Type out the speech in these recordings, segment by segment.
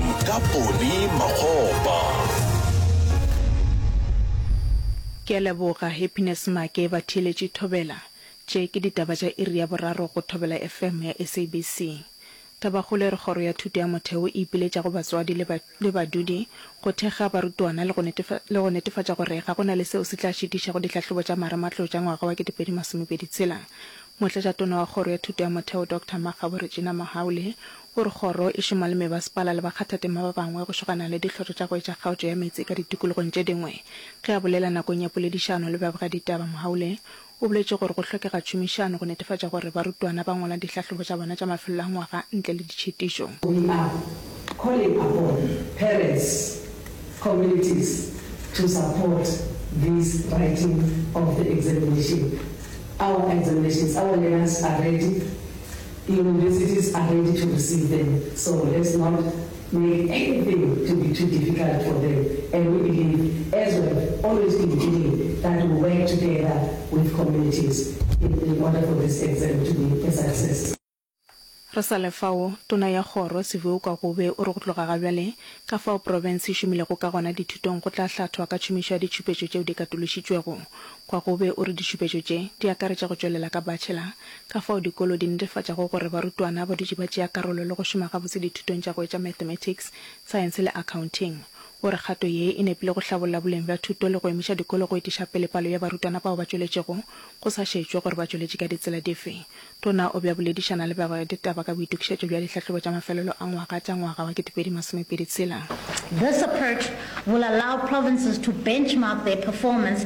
Ka Poni Makgopa. Ke a leboga Happiness Make ba theeletše Thobela. Tše ke ditaba tša iri ya boraro go Thobela FM ya SABC. Tabakgolo e re Kgoro ya Thuto ya Motheo e ipiletša go batswadi le ba, le badudi go thekga barutwana le go netefa, le go netefatša gore ga go na le seo se tla šitišago dihlahlobo tša marematlou tša ngwaga wa 2026. Motlatšatona wa Kgoro ya Thuto ya Motheo Doctor Makgabo Regina Mahaule O re kgoro e šoma le mebasepala le bakgathatema ba bangwe go šogana le dihlotho tša go etša kgaotšo ya meetse ka ditikologong tše dingwe. Ge a bolela nakong ya poledišano le babegaditaba, Mohaule o boletše gore go hlokega tšhomišano go netefatša gore barutwana ba ngwala dihlahlobo tša bona tša mafelelo a ngwaga ntle le ditšhitišo. We are calling upon parents, communities to support this writing of the examination. Our examinations, our learners are ready. The universities are ready to receive them so let's not make anything to be too difficult for them and we believe as we have always been doing that we work together with communities in in order for this exam to be a success. Re sa le fao, Tona ya Kgoro, Siviwe Kwagube, o re go tloga ga bjale, ka fao profense e šomilego ka gona dithutong go tla hlathwa ka tšhomišo ya ditšhupetšo tšeo di katološitšwego. Kwagube o re ditšhupetšo tše di akaretša go tšwelela ka bachelor Ka fao dikolo di netefatšago gore barutwana ba dutše ba tšea karolo le go šoma gabotse dithutong tša go etša mathematics, science le accounting. O re kgato ye e nepile go hlabolla boleng bja thuto le go emiša dikolo go etiša pele palo ya barutwana bao ba tšweletšego, go sa šetšwe gore ba tšweletše ka ditsela dife. Tona o be a boledišana le bagwera ditaba ka boitokišetšo bja dihlahlobo tša mafelelo a ngwaga tša ngwaga wa 2026. This approach will allow provinces to benchmark their performance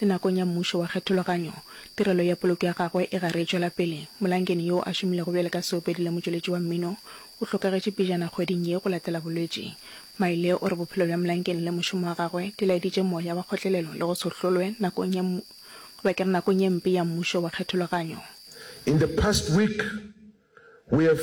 Le nakong ya Mmušo wa Kgethologanyo, tirelo ya poloko ya gagwe e gare e tšwela pele. Molankeni yo a šomilego bjale ka seopedi le motšweletši wa mmino o hlokagetše pejana kgweding ye go latela bolwetši. Maile o re bophelo bja Molankeni le mošomo wa gagwe di laeditše moya wa kgotlelelo le go se hlolwe nakong ya goba ke re nakong ye mpe ya Mmušo wa Kgethologanyo. In the past week we have.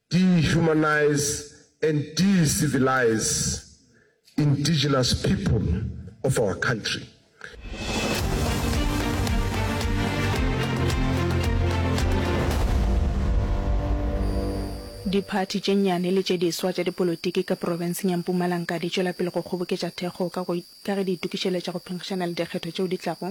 dehumanize and decivilize indigenous people of our country. Diphathi tše nnyane le tše diswa tša dipolotiki ka profenseng ya Mpumalanka di tšwela pele go kgoboketša thekgo ka ge di itokišeletša go phenkgišana le dikgetho tšeo di tlago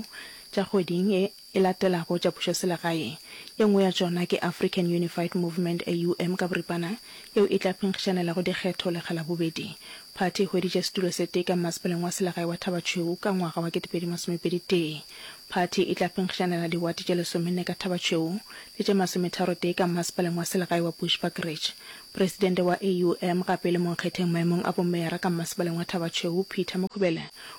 tša kgweding e. e latelago tša pušoselegaeng. Ye nngwe ya tšona ke African Unified Movement, AUM ka boripana, yeo e tla phenkgišanelago dikgetho lekga la bobedi. Phathi e hweditše setulo se tee ka mmasepaleng wa selegae wa Thabatšhweu ka ngwaga wa kete pedi masome pedi tee. Phathi e tla phenkgišanela diwate tše lesomenne ka Thabatšhweu le tše masometharo tee ka mmasepaleng wa selegae wa Bushbuckridge. Presidente wa AUM gape e le monkgetheng maemong a bomeyara ka mmasepaleng wa Thabatšhweu, Peter Mukhubele,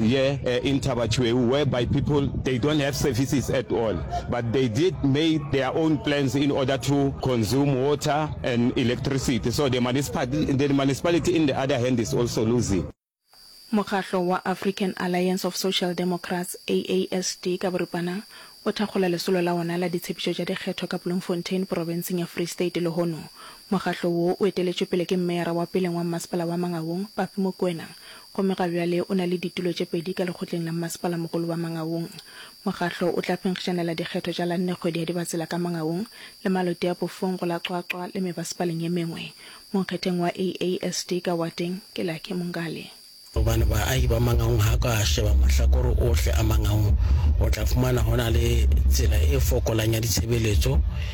Ye e ntaba tšhweu whereby people they don't have services at all but they did made their own plans in order to consume water and electricity so the the municipality in the other hand is also losing. Mokgatlo wa African Alliance of Social Democrats, AASD, ka boripana o thakgola lesolo la wona la ditshepetšo tša dikgetho ka Bloemfontein porofenseng ya Free State lehono mokgatlo wo o eteletšwe pele ke mmeyara wa peleng wa mmasepala wa Mangaung, Papi Mokwena, Gomme ga bjale o na le ditulo tše pedi ka lekgotleng la mmasepala-mogolo wa Mangaung. Mokgahlo o tla phenkgišanela dikgetho tša la nne kgwedi ya Dibatsela ka Mangaung, le malote a Pofong go la Qwaqwa le mebasepaleng ye mengwe. Monkgetheng wa AASD ka wateng ke Lucky Mongale. Gobane baahi ba Mangaung ha ka sheba mahlakore ohle a Mangaung, o tla fumana ho na le tsela e fokolang ya ditshebeletso,